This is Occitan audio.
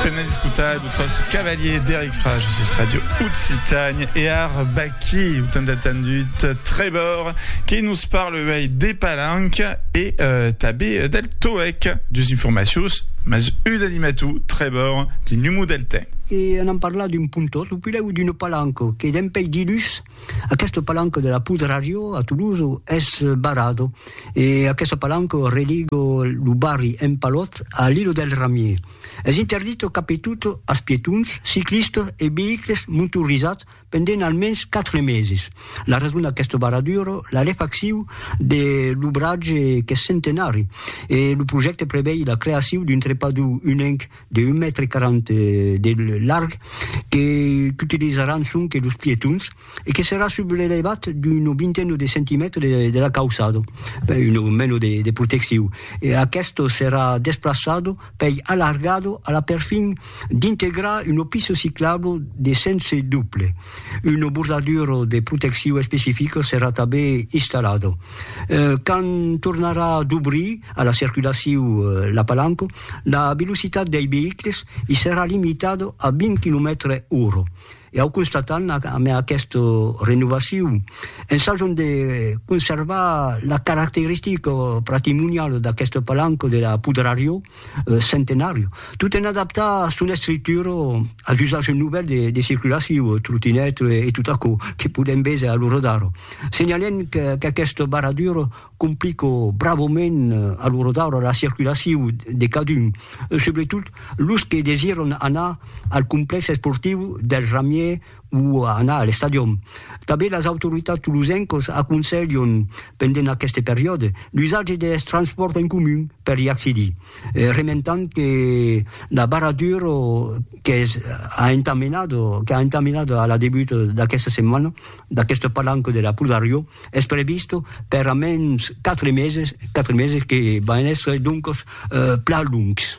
Venez escutar d'autres cavaliers d'Eric Frage sur Radio Occitanie et ar Baki, ou tant attendu Trébor, qui nous parle ouais, des palanques et euh, tabé del toec, des informations, mais une animatou Trébor, du numo del temps. E anam parlar d'un pontot, o pilèu d'una palanca, que dempeis dilhus, Aqueste palanco de la Poudre à Rio, a Toulouse, es barrado e aqueste palanco religo lo barri Empalot a l'Ilo del Ramier. Es interdito capitut as pietons, ciclistes e veïcles montorizats pendent almens quatre meses. La rason d'aqueste barraduro, la refaccion de l'obratge qu'es centenari e lo projècte prevei la creacion d'un trepador unenc de un mètre quaranta de larg que qu'utilizaràn sonque los pietons e que serà sub l'elevat d'una vintena de centimètres de la cauçada, una mena de de proteccion. E aqueste serà desplaçat pei alargat a la perfin d'integrar una pista ciclabla de sens doble. Una bordadura de proteccion especifica serà tanben installada. Quand tornarà dobrir a la circulacion la palanca, la velocitat dei veïcles i serà limitada a 20 quilomètres ora. E au constatam amé aquesta renovacion, ensajam de conservar la caracteristica patrimoniala d'aquesta palanca de la Pudrarió Centenària, tot en adaptar son estructura als usatges novèls de circulacion, trotinèt e tot aquò que podem véser a l'ora d'ara. Senhalem qu'aquesta barradura Complico bravament a lo rodaure la circulaciu de cadun, subretot los que desiràn anar al complèx esportiu del Ramier o anar a l'estadion. Tanben las autoritats tolosencas aconselhan, pendent aqueste periòde, l'usatge dels transpòrts en comun per i accedir, rementant que la barradura qu'es a entamenada, qu'a entamenada a la debut d'aquesta setmana, D'aqueste palanco de la Pulgariò es previst per a mens quatre meses, quatre meses que van èsser doncos plan longs.